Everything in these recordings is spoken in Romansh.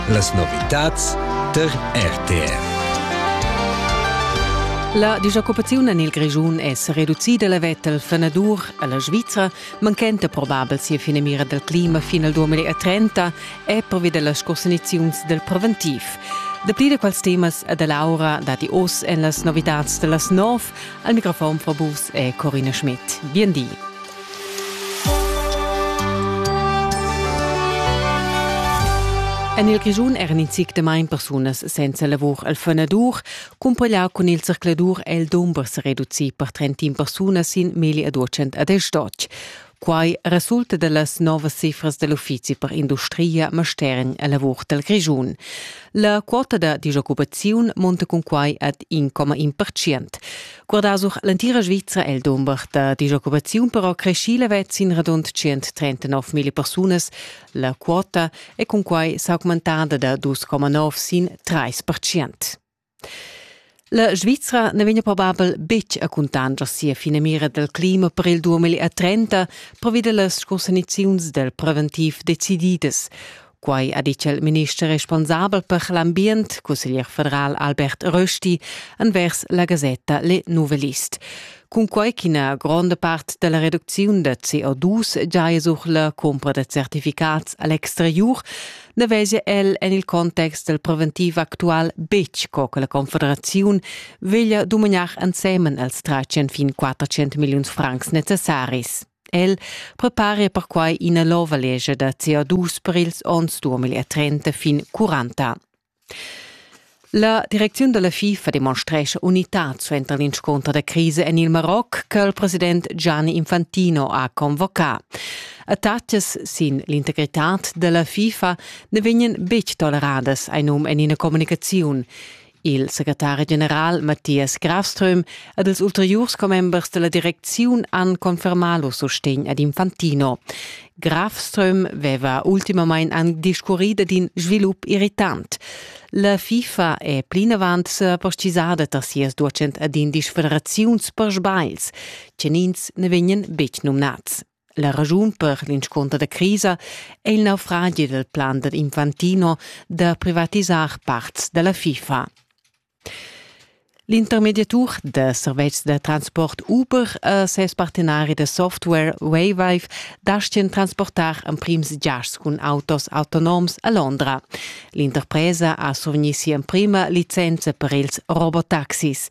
Las novitads tar RTR. La disoccupaziun en il Grischun è reducida la veta al fenadur a la Svizra, manchenta probabel sia fina mira dal clima fin al 2030 è pervi da las costaniziuns dal preventiv. Dapli da quels temas e da Laura dati oz en las novitads da las nov. Al microfon fra Bus è Corina Schmidt. Bien di. En il Grischun eran in zic damain persunas senza lavur al fenadur, cumpaglià cun il zercladur è il dumber sa reducì per 31 persunas sin meglio a 200 ad Estocch. Quai resulta da las novas cifras da l'Uffizi per industria Mastergn a lavur dal Grischun. La quota da disoccupaziun monta cun quai ad 1,1%. Guardà sur l'entira Svizra è il dumber da disoccupaziun però creschì levets sin radund 139 mila persunas. La quota è cunquai s'augmentada da 2,9 sin 3 percent. La Svizra ne vegna probabel betg a cuntanscher sia finamira dal clima per il 2030 previda las sconsegnaziuns dal preventiv decididas. Quai ha ditg il minister responsabel per l'ambient, cusseglier federal Albert Rösti, envers la gasetta Le Nouvelliste. Cunquai ch'ina gronda part da la reducziun da CO2 giaja sur la cumpra da certificats a l'exteriur, na vesia el en il context dal preventiv actual betg co che la Confederaziun veglia dumagnar ensemen els tratg fin 400 milliuns francs necessaris. El preparia perquai ina nova legia da CO2 per ils onns 2030 fin 40. La direcziun della FIFA demonstrescha unitad suenter l'insconter da crisi en il Maroc che il president Gianni Infantino ha convocat. Attacas sin l'integritad della FIFA ne vegnan betg toleradas, ein um en ina communicaziun. Il secretari general Matthias Grafström ed ils ulteriurs commembers della direcziun han confermà lo sostegn ad Infantino. Grafström veva ultimamain anc discurrì dad in svilup irritant. La FIFA è plinavant sa postisada tar sias docent ad indisch federaziuns per sbails, che ins ne vegnan betg numnads. La raschun per l'inscunter da crisa è il naufragi dal plan dad Infantino da privatisar parts da la FIFA. L'intermediatur da servetschs da transport Uber a ses partenari da software Wayvive dastgan transportar emprims giasts cun autos autonoms a Londra. L'interpresa ha survegnì sia emprima licenza per ils robotaxis.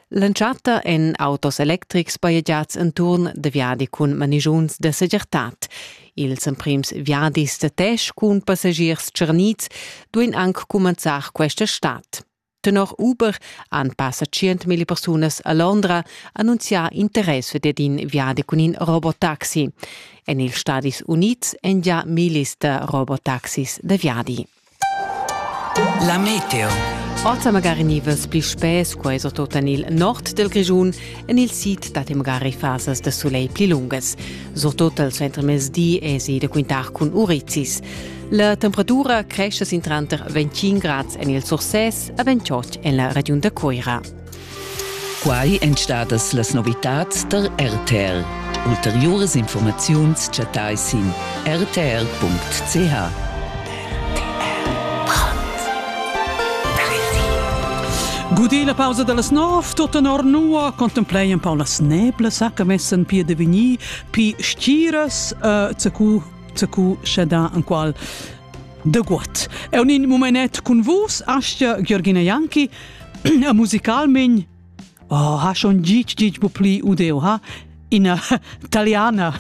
L'entschatta èn autos electrics bajegiads enturn da viadi cun manigiuns da segirtad. Ils emprims viadis da Tesch cun passagiers tscharnids duain anc cumenzar questa stad. Tenor Uber han passa 100.000 persunas a Londra annunzià interess for ed in viadi cun in robotaxi. En ils Stadis Unids èn gia millis da robotaxis da viadi. La meteo. Ozza magari nivas pli spess, quai so tot en il nord del Grischun, en il sid dat magari fasas de soleil pli lungas. So tot al centremezdi esi de quintar cun urizis. La temperatura cresce sin tranter 25 grads en il Surses e 28 en la regiun de Coira. Quai èn stadas las novitads tar RTR. Ulteriuras informaziuns chattai sin rtr.ch. Gudì la pausa da las nov, tut tenor nua contemplein pa las neblas che messen pi de vigni, pi stiras, uh, zacu, zacu sceda an qual de guat. E un in momenet cun vus, Astia Georgina Janki, Ja, musicalmein oh, ha schon gitg gitg bu pli udeu ha ina taliana